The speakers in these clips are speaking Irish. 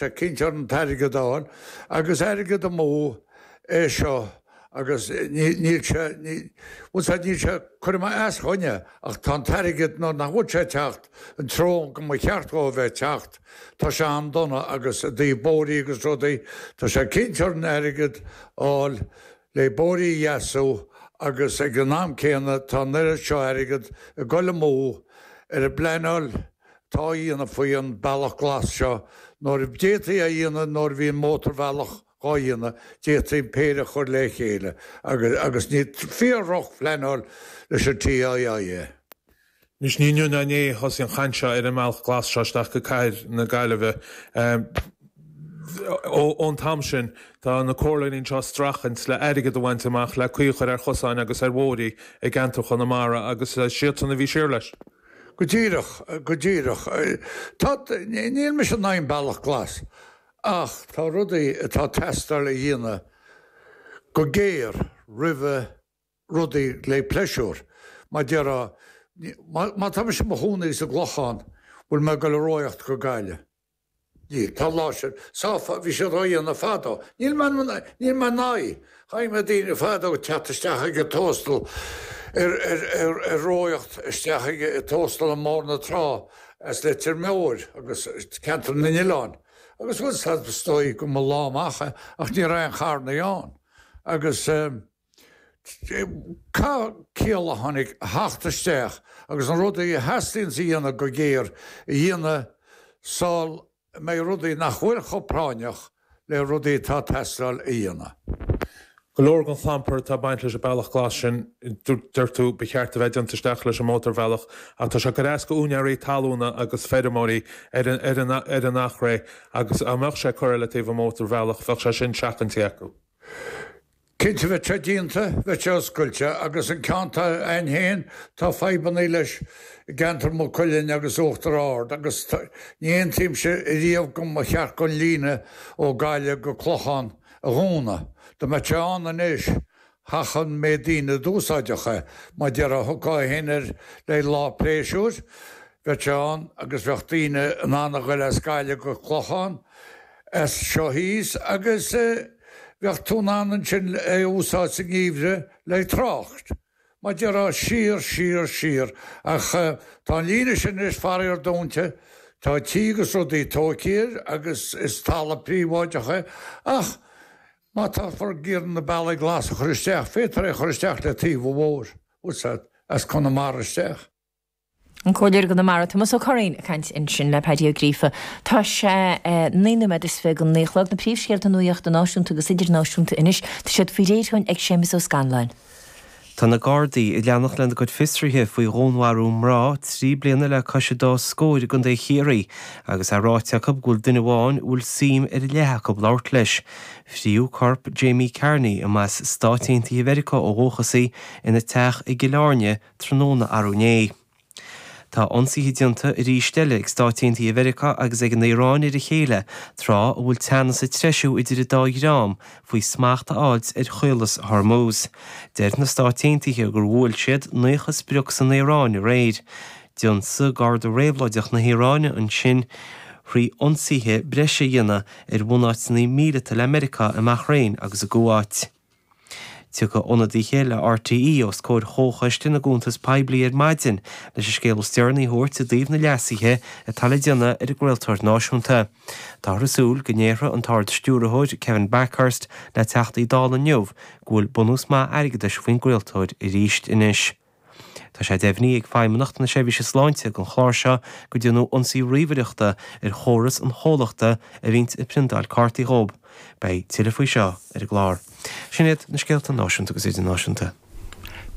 Tá cinnt orainn an t-airgead a fháil, agus airgead amú é seo agus níl sé, bhuel sea, níl sé, cuireadh mé as do dhuine ach tá an t-airgead, nuair nach bhfuil sé ag teacht an treo go mba cheart dhó a bheith ag teacht, tá sé an-dona agus i dtaobh bóithrí agus rudaí, tá sé ag cinnt orainn airgead a fháil. le bóithrí a dheasú agus ag an am céanna tá an oiread seo airgead ag dul amú ar an bpleanáil atá á dhéanamh faoi an Bealach Glas seo nuair a d'fhéadfaí é a dhéanamh nuair a bhí an mótarbhealach dhá dhéanamh, d'fhéadfaí an péire a chur le chéile agus, agus ní fíor-dhrochphleanáil leis an TII é. Anois, ní inniu ná inné a thosaigh an chaint seo ar an mBealach Glas seo isteach go cathair na Gaillimhe. Ón t-am sin, tá na comhairleoirí anseo ag streachailt le airgead a bhaint amach le caoi a chur ar chosáin agus ar bhóithrí i gceantar Chonamara agus siadsan a bhí siar leis. Go díreach, go díreach. Tá, níl mise in aghaidh an Bealach Glas ach tá rudaí atá ag teastáil a dhéanamh go géar roimhe, rudaí le pléisiúr. Mar déarfá, má tá mise i mo chónaí sa gClochán, bhfuil mé ag dul a rothaíocht go Gaillimh? Níl. Tá an lá sin sáfa. Bhí siad á dhéanamh fadó. Níl mé níl mé in aghaidh. Chonaic mé daoine fadó ag teacht isteach ag an Tóstal ar ar ar ar rothaíocht isteach ag ag Tóstal i mBóthar na Trá as Leitir Móir agus Ceantar na nOileán agus bhuel is dóigh go mba lá amach é ach ní raibh aon charrannaí ann agus eh Caithfidh ciall áirid a theacht isteach agus na rudaí a theastaíonns a dhéanamh go géar a dhéanamh sul a mbeidh rudaí nach bhfuil chomh práinneach le rudaí atá teastáil a dhéanamh. Go leor den chlampar atá ag baint leis an Bealach Glas sin, dúirt tú, ba cheart a bheith déanta isteach leis an mótarbhealach ach tá sé ag cur as do úinéirí talúna agus feirmeoirí ar an Eachréidh agus dá mbeadh sé curtha le taobh an mhótarbhealach bheadh sé sin seachaintí acu. Cinnte bheadh sé déanta, bheadh sé oscailte agus an ceann atá a'ainn féin tá fadhbannaí leis i gceantar Mhaigh Cuilinn agus Uachtar Ard agus ní aontaímse riamh go mba cheart an líne ó Gaillimh go Clochán a dhúnadh. Dá mbeadh sé ann anois féach an méid daoine a d'úsáidfeadh é. Mar déarfá thiocfá fhéin air le lá pléisiúir bheadh sé ann agus bheadh daoine in ann a ghoil as Gaillimh go Clochán as seo thíos agus bheadh tú in ann ansin é a úsáid sa ngeimhreadh le trácht. Mar déarfá siar, siar, siar, ach tá an líne sin anois faraor dúnta, tá tithe agus rudaí tóigthe air agus is talamh príobháideach é, ach má táthar ag iarraidh na bealaí glasa a chur isteach, féadfar é a chur isteach le taobh an bhóthair, úsáid, as Conamara isteach. An Comhairleoir i gConamara, Tomás Ó Curraoin ag caint ansin le Paddy Ó Gríofa. Tá sé naoi nóiméad is fiche go naoi a chlog. Na príomhscéalta nuachta náisiúnta agus idirnáisiúnta anois. Tá siad faoi réir againn ag Séamus Ó Scanláin. Tá na Gardaí ag leanacht lena gcuid fiosruithe faoi dhúnmharú mná trí bliana le cois an dá scór i gContae Chiarraí agus é ráite acu go bhfuil duine amháin a bhfuil suim ar leith acu labhairt leis. Fritheadh corp Jamie Carney, a mba as Stáit Aontaithe Mheiriceá ó dhúchas í, ina teach i gCill Airne tráthnóna arú inné. Tá ionsaithe déanta arís eile ag Stáit Aontaithe Mheiriceá agus ag an Iaráin ar a chéile tráth a bhfuil teannas ag treisiú idir an dá dhream faoi smacht a fháilt ar Chaolas Hormuz. Deir na Stáit Aontaithe gur bhuail siad 90 sprioc san Iaráin aréir. D'ionsaigh Gardaí Réabhlóideach na hIaráine ansin trí ionsaithe breise a dhéanamh ar bhunáiteanna míleata le Meiriceá i mBahrain agus i gCuáit. Tiocfaidh ionadaithe le RTÉ os comhair Chomhchoiste na gCuntas Poiblí ar maidin leis an scéal is deireanaí a thabhairt i dtaobh na leasuithe atá le déanamh ar an gcraoltóir náisiúnta. Táthar ag súil go ndéarfaidh an tArd-Stiúrthóir, Kevin Bakhurst, le Teachtaí Dála inniu go bhfuil bunús maith airgeadais faoin gcraoltóir arís anois. Tá sé deimhnithe ag Feidhmeannacht na Seirbhíse Sláinte don chlár seo go ndearnadh ionsaí ríomhaireachta ar chóras an chomhlachta a bhíonns ag priontáil cártaí dhóib. Beidh tuilleadh faoi seo ar an gclár. Sin iad na scéalta náisiúnta agus idirnáisiúnta.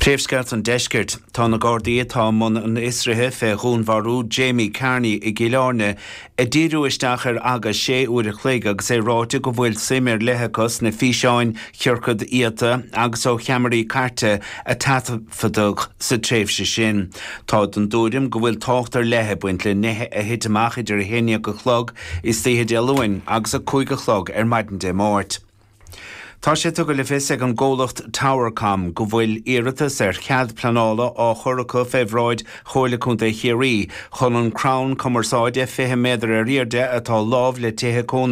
Príomhscéalta an Deiscirt, Tá na Gardaí atá i mbun an fhiosruithe fé dhúnmharú Jamie Carney i gCill Airne ag díriú isteach ar agus sé uair a chloig agus é ráite go bhfuil suim ar leith acu sna físeáin chiorcaid iata agus ó cheamaraí cairte a taifeadadh sa tréimhse sin. Táid den dtuairim go bhfuil tábhacht ar leith ag baint le nithe a thit amach idir a haon dhéag a chlog istoíche Dé Luain agus a cúig a chlog ar maidin Dé Máirt. Tá sé tugtha le fios ag an gcomhlacht Towercom go bhfuil iarratas ar chead pleanála á chur acu fé bhráid Chomhairle Contae Chiarraí chun an crann cumarsáide 20 méadar ar airde atá lámh le tithe cónaithe